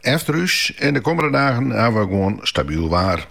Efter ús en de kommende dagen hawwe we gewoan stabyl waar.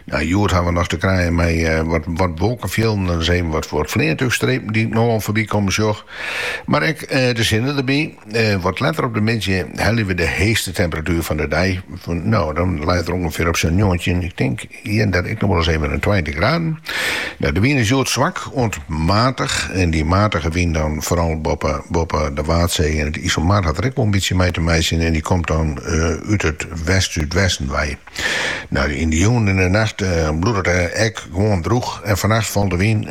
Nei hjoed hawwe we noch te krijen mei wat wolkenfjilden en ris even wat fleantúchstrepen dy't ik no al foarby komme sjoch. Mar ek de sinne derby. Wat letter op de middei helje we de heechste temperatuer fan de dei, no dan leit er ûngefear op sa'n njoggentjin. En dêr ek noch wol ris even in tweintich graden. Nou, de wyn is hjoed swak oant matich. En dy matige wyn dan foaral boppe, boppe de Waadsee en it Iselmar hat der ek wol in bytsje mei te meitsjen. En dy komt dan út it west-súdwesten wei. Nou, yn de jûn en de nacht bliuwt it ek gewoan drûch. En fannacht falt de wyn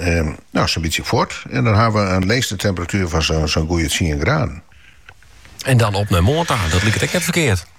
no sa'n bytsje fuort. En dan hawwe we in leechste temperatuer fan sa'n goeie tsien graden. En dan op nei moarn ta. Dat liket ek net ferkeard.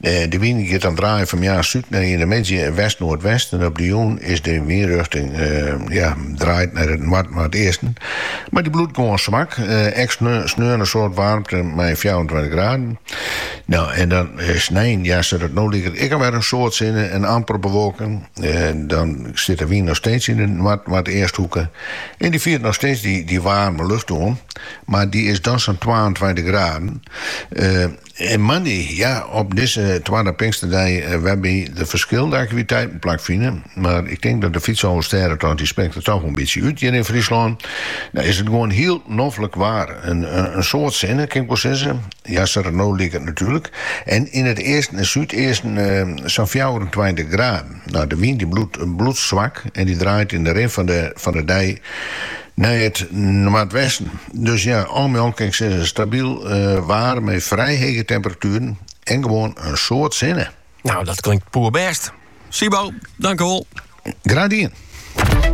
De wyn giet dan draaien fan moarn súd nei yn de middei west-noardwest en op de jûn is de wynrjochting draaid nei it noard-noardeasten. Mar dy bliuwt gewoan swak, ek sneon in soad waarmte mei fjouwerentweintich graden. No en dan snein, ja sa't it no liket ek al wer in soad sinne en amper bewolking. Dan sit de wyn noch steeds yn de noard-noardeasthoeke en dy fiert noch steeds dy waarme lucht oan, mar dy is dan sa'n twaentweintich graden. Moandei, ja, op dizze twadde Pinksterdei wêrby't de ferskillende aktiviteiten plak fine. Mar ik tink dat de Fytsalvestêdetocht dy springt der toch in bytsje út hjir yn Fryslân. No is it gewoan hiel noflik waar. In soad sinne, kin ik wol sizze. Ja, sa't it no liket natuerlik. En yn it easten en súdeasten sa'n fjouwerentweintich graden. No, de wyn dy bliuwt swak en dy draait yn de rin fan de dei Nei it noardwesten. Dus ja, al mei al kin ik sizze stabyl eh, waar mei frij hege temperatueren en gewoan in soad sinne. Nou, dat klinkt poerbêst. Sibo, tankewol. Graach dien.